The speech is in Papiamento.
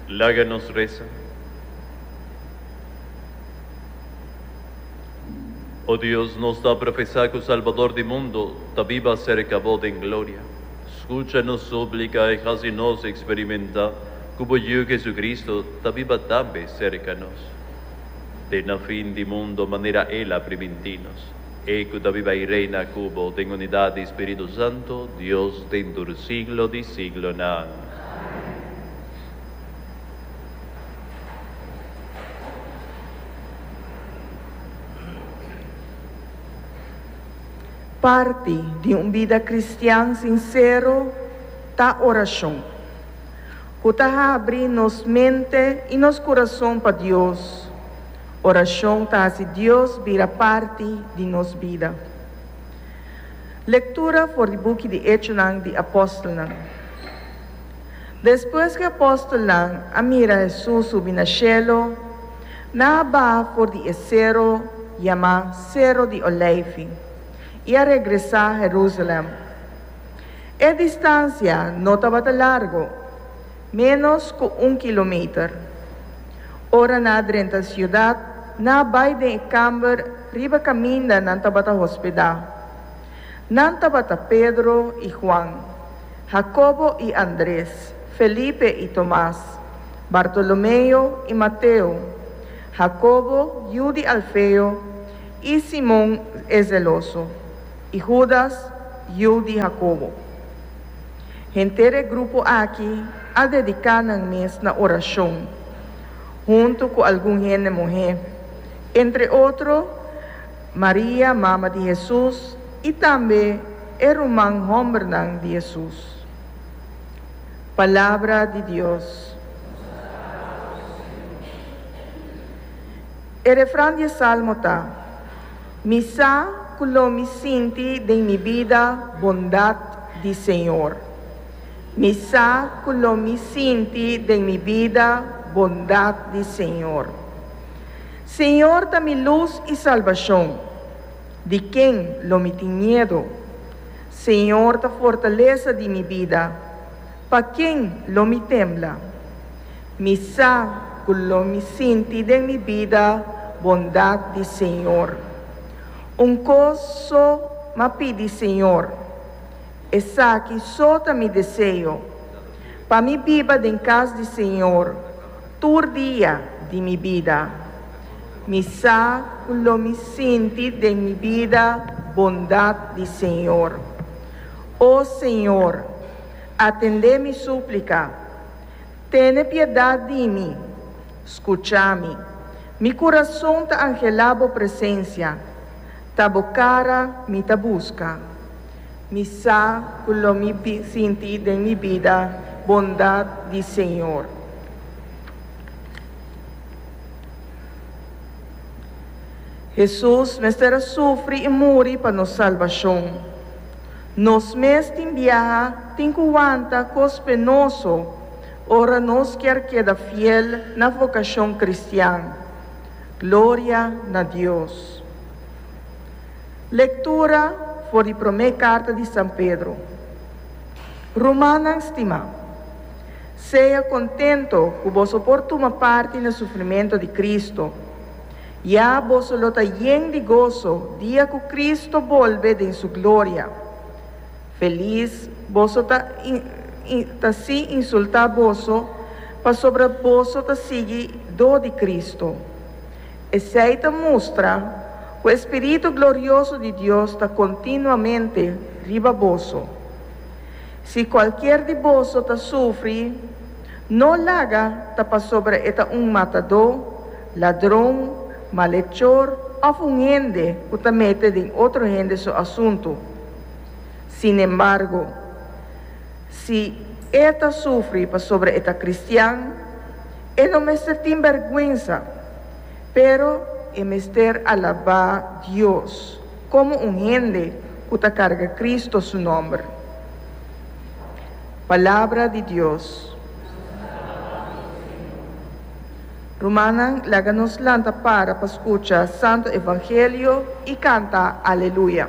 Laga nos resa. O Dios, nos ta profesá ku Salbador di mundu ta biba serka Bo den gloria. Skucha nos súplika i hasi nos eksperimentá ku Bo Yu Hesukristu ta biba tambe serka nos den na fin di mundu manera El a primintí nos. E ku ta biba i reina ku bo den unidat di spiritu santu Dios den tur siglo di siglonan. Amen. Parti di un bida kristian sinsero ta orashon, ku ta habri nos mente i nos kurason pa Dios. Orashon ta hasi Dios bira parti di nos bida. Lektura for di buki di Echonan di Apòstelnan. Despues ku e apòstelnan a mira Hesus subi na shelu, nan a baha for di e sero yamá Sero di Oleifi i a regresá Herúsalèm. E distansia no tabata largu. Ménos ku un kilometer. Ora nan a drenta siudat, nan a bai den e kamber riba kaminda nan tabata hospedá. Nan tabata Pedro i Juan, Hakobo i Andres, Felipe i Tomas, Bartolomeo i Mateo, Hakobo, yu di Alfeo, i Simon e zeloso, i Hudas, yu di Hakobo. Henter e grupo aki a dediká nan mes na orashon, huntu ku algun hende muhé, entre otro Maria, mama di Hesus, i tambe e ruman hòmbernan di Hesus. Palabra di Dios. E refran di e salmo ta. Mi sa cu lo mi sinti den mi bida bondad di Señor. Mi sa cu lo mi sinti den mi bida bondad di Señor. Señor ta mi luz y salbacion, di ken lo mi tin miedo? Señor ta fortalesa di mi bida. Pa ken lo mi tembla? Mi sa ku lo mi sinti den mi bida bondat di Señor. Un kos so m'a pidi Señor, esaki so ta mi deseo, pa mi biba den kas di Señor tur dia di mi bida. Mi sa ku lo mi sinti den mi bida bondat di Señor. O Señor! Atendé mi súplika. Tene piedat di mi. Skuchá mi. Mi kurason ta anhelá Bo presensia. Ta Bo kara mi ta buska. Mi sa ku lo mi bin sinti den mi bida bondat di Señor. Hesus mester a sufri i muri pa nos salbashon. Nos mes tin biaha tin ku wanta kos penoso ora nos kier keda fiel na vokashon kristian. Gloria na Dios! Lektura for di promé karta di San Pedro. Rumannan stimá, sea kontento ku boso por tuma parti na sufrimentu di Kristu. Ya boso lo ta yen di goso dia ku Kristu bolbe den su gloria. Felis boso ta ta si insultá boso pasobra boso ta sigui dó di Kristu. Esei ta mustra ku e spiritu glorioso di Dios ta kontinuamente riba boso. Si kualkier di boso ta sufri, no laga ta pasobra e ta un matadó, ladron, malechor of un hende cu ta mete den otro hende su asuntu. Sin embargo, si e ta sufri pasobra e ta cristian, e no mester tin bergwensa, pero e mester alabá Dios como un hende cu ta carga Cristo su nomber. Palabra di Dios. Rumannan, laga nos lanta para pa scucha Santo Evangelio y canta Aleluya.